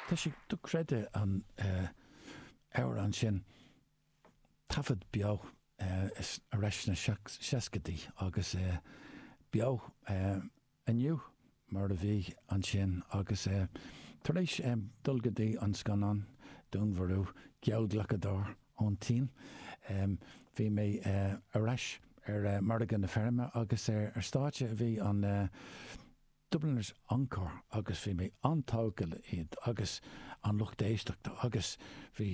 Tá sé dochreidte an amhrán sin taifead beo ar ais sna seascaidí agus beo inniu mar a bhí ansin agus tar éis dul go dtí an scannán Dúnmharú Geallghlacadóir ón tSín bhí mé ar ais ar Margadh na Feirme agus ar stáitse a bhí an Dubliners encore agus bhí mé an-tógtha le iad agus an lucht éisteachta agus bhí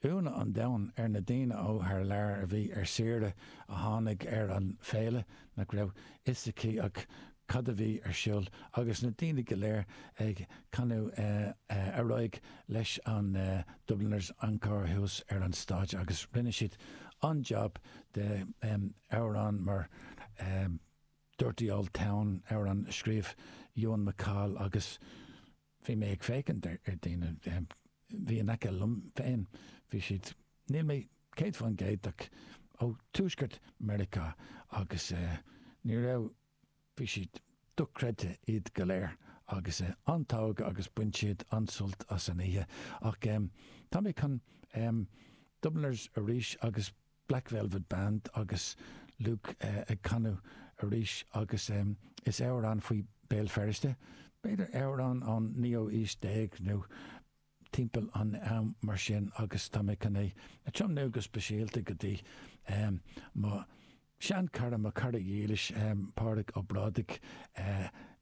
ionadh an domhain ar na daoine ó thar lear a bhí ar saoire a tháinig ar an bhféile nach raibh fhios aici ach cad a bhí ar siúl agus na daoine go léir ag canadh ar aghaidh leis an Dubliners encore thuas ar an stáitse agus rinne siad an-jab de amhráin mar Dirty Old Town amhrán a scríobh Ewan MacColl agus bhí mé ag féachaint ar daoine, bhí in aice liom féin, bhí siad, níl mé 100% ach ó Tuaisceart Mheiriceá agus ní raibh, bhí siad dochreidte iad go léir agus an-tógtha agus bain siad an-sult as an oíche ach tá mé chun Dubliners arís agus Black Velvet Band agus Luke ag canadh arís agus is amhrán faoi Béal Feirste, b'fhéidir amhrán ón naoú haois déag nó timpeall an am mar sin agus tá mé chun é a tiomnú go speisialta go dtí mo sheanchara, mo chara dhílis Pádraig Ó Brádaigh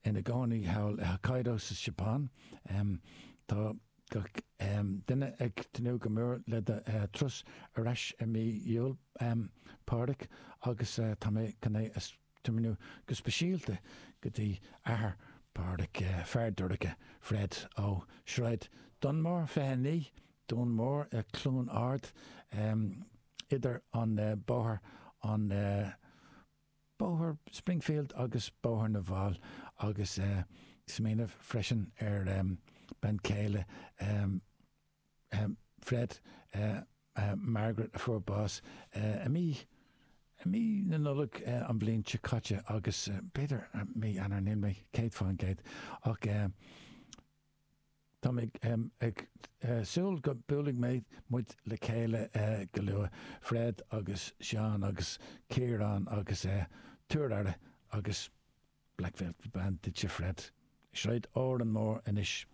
ina gcónaí thall i Hokkaido sa Seapán. Tá. gach duine ag tnúth go mór le do thuras ar ais i mí Iúil, Pádraig, agus tá mé chun é a thiomnú go speisialta go dtí athair Phádraig, Feardorcha, Fred, ó Shráid Dunmore 29, Dún Mór, Cluain Ard, idir an Bóthar an. Bóthar Springfield agus Bóthar na bhFál agus ag smaoineamh freisin ar bean chéile Fred, Margaret, a fuair bás i mí i mí na Nollag an bhliain seo caite agus b'fhéidir mí Eanáir, níl mé céad fán gcéad ach. Tá mé ag súil go mbuailfidh mé muid le chéile go luath, Fred agus Seán agus Ciarán agus tabhair aire agus Black Velvet Band duitse, Fred, i Sráid Órán Mór anois.